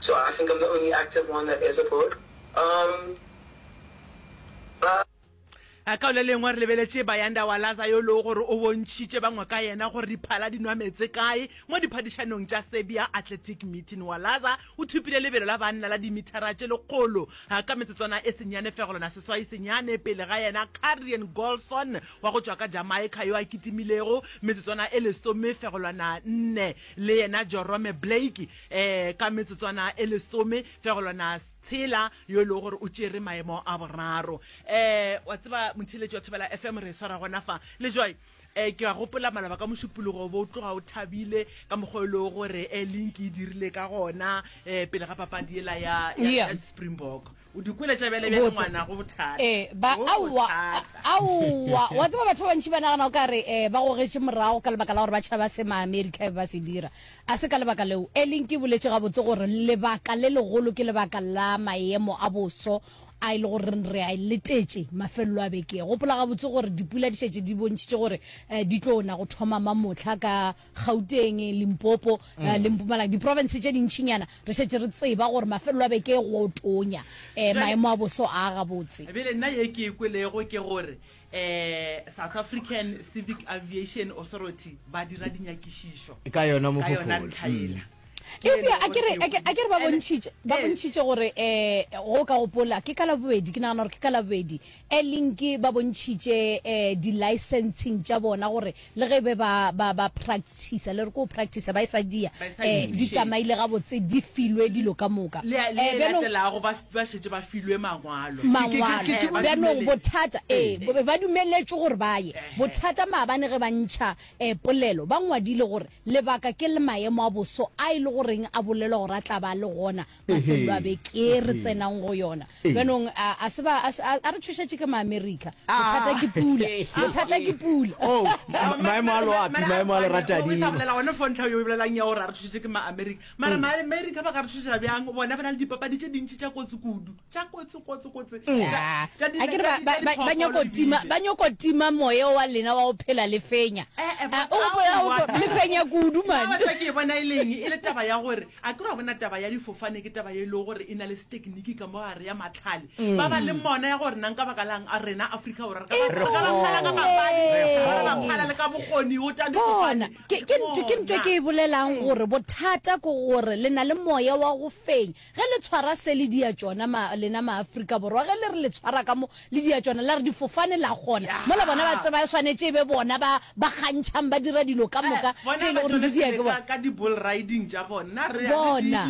So I think I'm the only active one that is aboard um ba. A ka o le lengwa re lebeletše Bayanda Walaza yo lego gore o bontšhitše bangwe ka yena gore diphala di nwa metse kae mo diphadišanong tša Serbia Athletic Meeting. Walaza o thupile lebelo la banna la dimithara tše lekgolo ka metsotswana e senyane fego lona seswai senyane pele ga yena Karrion Golson wa go tšwa ka Jamaica yo a kitimilego metsotswana e lesome fego lwana nne le yena Jorome Blake Ee, ka metsotswana e lesome fegolwana tshela yo e lego gore o tšere maemo a boraro. Ee, wa tseba motheletši wa Thobela FM re e swara gona fa le joy. Ee, ke a gopola maloba ka mošupologo bo tloga o thabile ka mokgwa e lego gore e link e dirile ka gona ee pele ga papadi ela ya, ya, ya Springbok. O di kwele tša bjale bjale ngwana go bothata. Eh, ba Go aowa bothata. aowa wa tseba batho ba bantši ba nagana o ka re eh, ba gogetše morago ka lebaka la gore ba tšhaba se maamerika e be ba se dira a se ka lebaka leo e leng ke boletše gabotse gore lebaka le legolo ke lebaka la maemo a boso a e le gore re a e letetše mafelelo a beke gopola gabotse gore dipula di šetše di bontšhitše gore eh, di tlo na go thoma mamotlha ka Gauteng, Limpopo mm. uh, le Mpumalanga diprovince tše dintšhinyana re šetše re tseba gore mafelelo a beke go tonya um maemo a boso a gabotse ebele nna ye ke e kwelego ke gore eh South African Civic Aviation Authority ba dira dinyakišišo ka yona mo yona ntlhaela ebile a kere a kere ba bontšitše ba bontšitše gore eh go ka gopola ke ka la bobedi ke nagana gore ke ka la bobedi E link ba bontšhitše di licensing tša bona gore le ge be ba ba ba practicer le re ko practicer ba e sa dia di tsamaile ga botse di filwe dilo ka moka e bjalo latelago ba ba šetše ba filwe mangwalo mangwalo bjalo bothata e ba dumeletšwe gore ba ye bothata maabane ge ba ntšha e polelo ba ngwadile gore lebaka ke le maemo a boso a ile goreng a bolelwa gore a tla ba le gona mafelo a beke re tsenang go yona jaanong a se ba a re tshošetše ke maamerika bothata ke pula bothata ke pula oh, maemo a loapi maemo a leratadila one fo ntlha yo bolelang ya gore a re tshošetše ke maamerika mara mm. maamerika ba ka re tshošetša bjang bona ba na le dipapadi tše dintši tša kotsi kudu tša kotsi kotsi kotsi ba nyoko tima moya wa lena wa go phela le fenya eh, eh, o gopola lefenya kudu mane ke bona e leng e le taba ya gore A ke wa bona taba ya difofane ke taba ye e lego gore e na le setekiniki ka mo gare ya mahlale ba ba leng mona ya gore nang ka baka lang a rena Afrika Borwa re ka ba re ka ba phala ka mabadi gore ba phala le ka bokgoni go tša Bona, difofane. ke ke ntho ke ntho e ke e bolelang gore bothata ke gore le na le moya wa go fenya ge le tshwara se le dia tšona ma, lena maAfrika Borwa ge le re le tshwara ka mo le diatšwana la re difofane la gona mola bona ba tseba e swanetše e be bona ba ba kgantšhang ba dira dilo ka moka tše e le gore di dia ke bona ka di bull riding tša bona re bona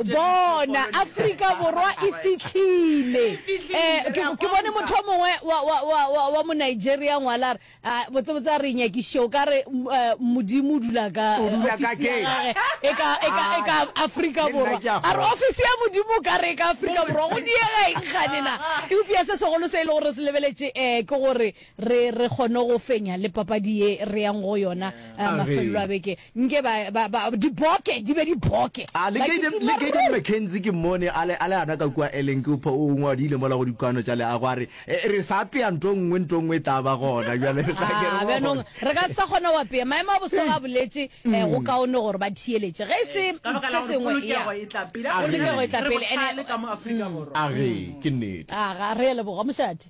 bona Afrika borwa e fitlhile eh ke bone motho mongwe wa wa wa wa mo Nigeria ngwalar A, botsebotse a re nyakiše, o ka re m- eh, Modimo o dula ka O dula ka ofisi ya keng? gage e ka, e ka, e ka Ai, Afrika le nna Borwa. ke a A re kgolwa. ofisi ya Modimo o ka re e ka Afrika Borwa, go diega eng gane na? Eupša se segolo se e le gore re se lebeletše eh, ke gore re, re kgone go fenya le papadi ye re yang go yona eh, A re. mafelelo a beke. Nke ba, ba, ba, diboke, di be diboke. A le Kayden, le Kayden McKenzie ke mmone a le, a le ana ka kua Ellen, ke upha o ongwe a diile mola go dikwaano tša leago a re, E, re sa apea nto nngwe, nto nngwe e tla ba gona bjale, re tla ke re Ah, boa bjanong gona. re ka se sa kgona go apea. Maemo a boso ga a boletše eh, go kaone gore ba thiyeletše. Ge e se Ee, ka baka la se gore sengwe, ya. polokego e tla pele. A Polokego e re, tla re pele, ene- bohlale ka mo Afrika Borwa. A re, ke nnete. Ah, ga re a leboga, mošate.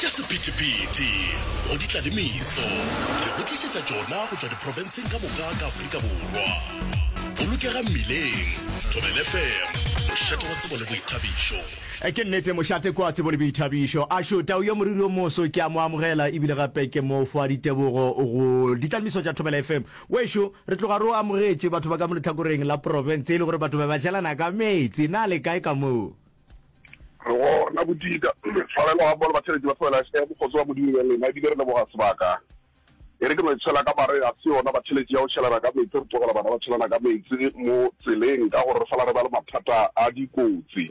Tša sephethephethe go di tla le meso re go tlišetša tšona go tšwa diprofenseng ka moka ka Afrika Borwa. Bolokega mmileng, Thobel FM, mošate wa tsebo le boithabišo. Ke nnete, mošate ke wa tsebo le boithabišo. Ashu, tau ya moriri o moso, ke a mo amogela e bile gape ke mo fa ditebogo go ditlalemiso tša Thobela FM. Wešo, re tloga re o amogetše, batho ba ka mo lehlakoreng la profense e le gore batho ba ba šelana ka meetse. Na le kae ka moo? Go na bodika, tshwarelo ga mmogo le batšheletši ba tlogela hle bokgotsi wa Modimo bjang lena, ebile re leboga sebaka. E re ke no tšhela ka mare, ga se yona batšheletši ya go tšhelana ka meetse, re tlogela bana ba tšhelana ka meetse mo tseleng ka gore re sala re ba le mathata a dikotsi.